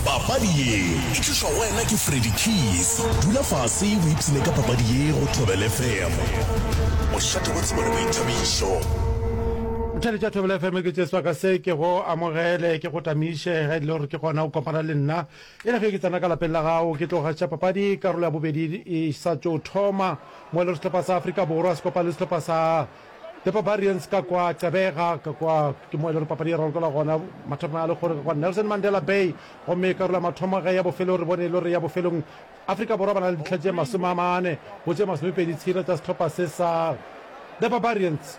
papadi ye e tlišwa go wena ke freddy keys dula fase o ipsene ka papadi ye go thobel fm mošate wa tsebo le boithabišo Tšhale tša Thobela FM ke tšeswa ka se ke go amogele ke go tamiše ge le gore ke gona o kopana le nna e le ge ke tsena ka lapeng la gago ke tlo gaša papadi karolo ya bobedi e sa tšo thoma mo le sehlopha sa Afrika Borwa se kopa le sehlopha sa The Barbarians ka kwa Gqeberha ka kwa ke mo e le gore papadi e ralokelwa gona mathomo a legoro ka kwa Nelson Mandela Bay gomme karolo ya mathomo ge ya bofelo re bone e le gore ya bofelong Afrika Borwa ba na le ditlha tše masome a mane go tše masomepedi tshela tsa setlhopha se sa The Barbarians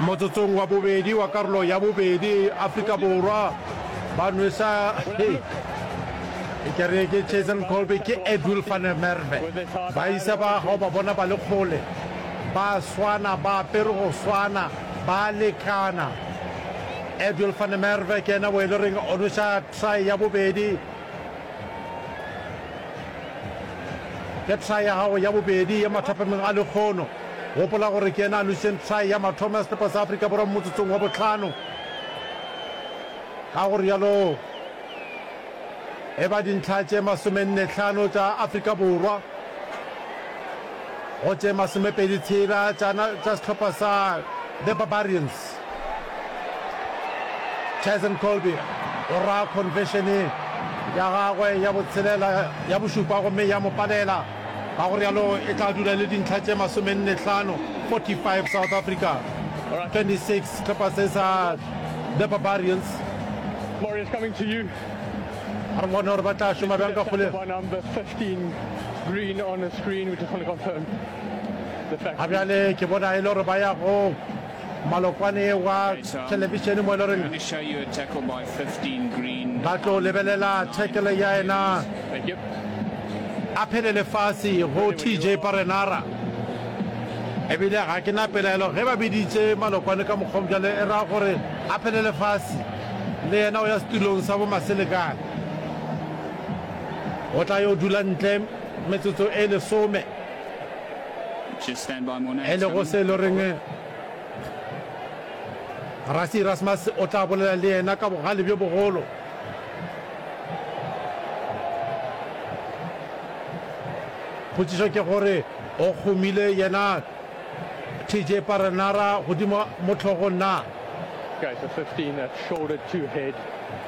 Motsotsong wa bobedi wa karolo ya bobedi, Afrika Borwa ba nwesa ke re ke Jason Kolbe ke Edwill van der Merwe. Ba isa ba ga o ba bona ba le kgole, ba swana, ba apere go swana, ba lekana. Edwill van der Merwe ke ena o e le reng o nwesa try ya bobedi, ke try ya gago ya bobedi ya mathapameng a lekgono. Gopola gore ke yena a lošeng try ya mathomo ya sehlopha sa Afrika Borwa mo motsotsong wa bohlano. Ka go rialo e ba dintlha tše masomenne hlano tša Afrika Borwa go tše masomepedi tshela tša sehlopha sa The Barbarians. Tyson Colby o ra conversion ya gagwe ya botshelela ya bošupa gomme ya mo palela. Ka go realo e tla dula e le dintlha tše masomenne-hlano, 45, South Africa, 26, sehlopha se sa The Barbarians. A re bone gore ba tla šoma bjang ka kgole. Ga bjale ke bona e le gore ba ya go. Malokwane wa thelebišene mo e le goreng ba tlo lebelela thekele ya ena a phele lefase go TJ Parenara ebile ga ke na pelaelo ge ba biditse Malokwane ka mokgwa bjale e ra gore a phele lefase le yena o ya setulong sa bo Maselekane o tla yo dula ntle metsotso e lesome. e lego se e le reng rasi Erasmus o tla bolela le yena ka bogale bjo bogolo. potšišo ke gore o kgomile yena tj paranara godimo mo tlhogo na